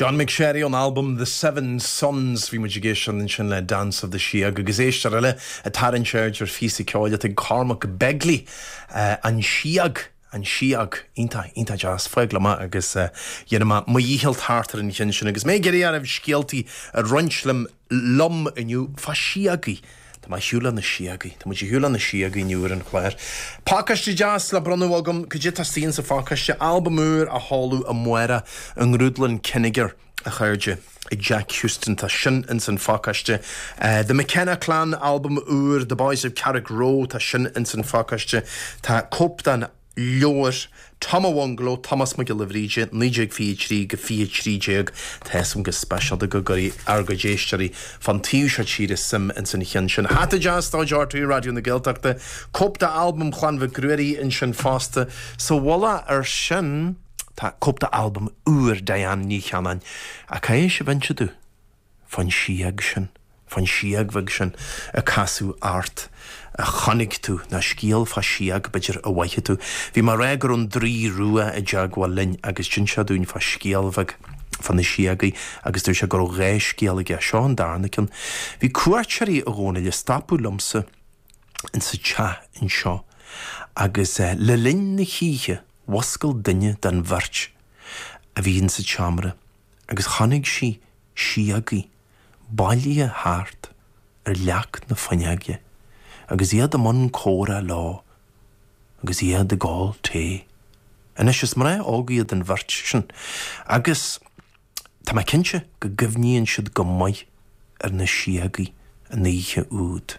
John McSherry ón albam The Seven Suns. Bhí muid ag éisteacht ansin le Dance of the Síog agus éisteoir eile ag tarraingt aird ar phíosa ceoil atá ag Cormac Begley, An Síog, An Síog. Iontach, iontach deas. Fág liom é agus dhéanfaidh mé mo dhícheall thart ar an cheann sin agus mé ag iarraidh oraibh scéaltaí a roinnt liom. liom inniu fá síogaí. Tá mé ar shiúl le na síogaí. Tá muid ar shiúl le na síogaí inniu ar an chlár. Pacáiste deas le bronnadh agam. Cad é atá istigh insa phacáiste? Albam úr á sheoladh amárach, i nGrúdlann Kinnegar, a chairde, ag Jack Houston. Tá sin ins an phacáiste. The McKenna Clan, albam úr, The Boys of Carrickroe, tá sin ins an phacáiste. Tá cóip den. leabhar Tom an Bhungaló, Tomás Mac Giolla Bhríde, 1923-2013, tá a fhios agam go speisialta go gcuirfidh ár gcuid éisteoirí fán taobh seo tíre suim ins an cheann sin. Hata deas de chuid RTÉ Raidió na Gaeltachta, cóip d'albam Chlann Mhic Ruairí ansin fosta. Sa mhullach ar sin, tá cóip d'albam úr Diane Ní Chanainn. Ach caithfidh sibh inse domh? Fán síog sin, fán síog sin, a casadh ort, a chonaic tú, ná scéal fá síog, b'fhéidir, a mhothaigh tú. Bhí mé ag rá go raibh an draoi rua i dteagmháil linn agus d'inis sé dúinn fá scéal bheag fá na síogaí agus dúirt sé go raibh dhá scéal aige, seo an darna ceann. Bhí cuairteoirí i gcónaí le stopadh liomsa insa teach anseo agus le linn na hoíche mhuscail duine den bheirt a bhí insa tseomra. agus chonaic sí síogaí bailithe thart ar leac na fuinneoige agus iad i mbun comhrá leo agus iad ag ól tae. Anois, is mná óga iad an bheirt sin agus tá mé cinnte go gcuimhníonn siad go maith ar na síogaí an oíche úd.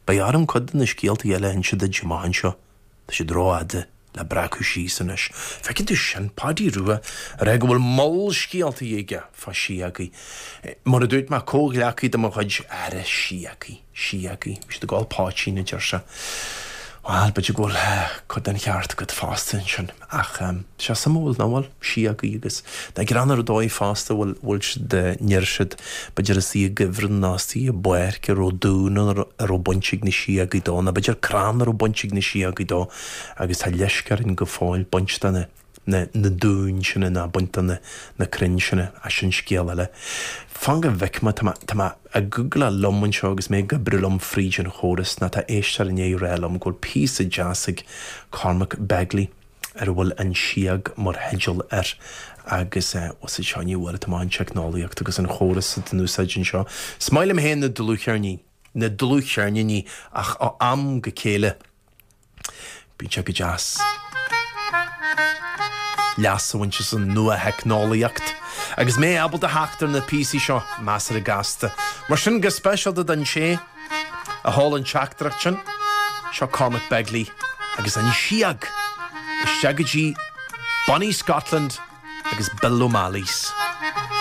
Beidh orm cuid de na scéaltaí eile a inse duit amach anseo. Tá siad rófhada le breacadh síos anois. Feiceann tú sin, Páidí Rua, ag rá go bhfuil moll scéaltaí aige fá Síogaí. Mar a dúirt mé, comhghleacaí de mo chuid, ag rá síogaí, Síogaí, bhí siad ag ól poitín, a deir sé. Bhuel, b'fhéidir go bhfuil cuid den cheart agat fosta ansin. Ach tá sé suimiúil, nach bhfuil? síogaí agus na gcrann ar ndóigh fosta, bhfuil a fhios agat, deir siad, b'fhéidir istigh i gcuibhreann ná istigh i bpáirc a raibh dún ann a raibh baint ag na síogaí dó, ná b'fhéidir crann a raibh baint ag na síogaí dó agus tá leisc orainn go fóill baint de na na dúin sin ná baint de na na crainn sin, ach sin scéal eile. Fan go bhfeicfimid, tá mé, tá mé ag googláil liom anseo agus mé ag oibriú liom fríd an chóras, ná tá éisteoir i ndiaidh a rá liom go bhfuil píosa deas ag Cormac Begley, ar a bhfuil An Síog mar theideal air, agus is iontach an rud an teicneolaíocht agus an córas atá in úsáid anseo. Is maith liom féin na dlúthcheirníní, na dlúthcheirníní, ach ó am go chéile, bíonn sé go deas leas a bhaint as an nua-theicneolaíocht agus mé ábalta a theacht ar na píosaí seo, measartha gasta. Mar sin, go speisialta don té. a chuir an teachtaireacht sin. Seo Cormac Begley agus An Síog isteach go dtí Bonnie Scotland agus Bill O'Malley's.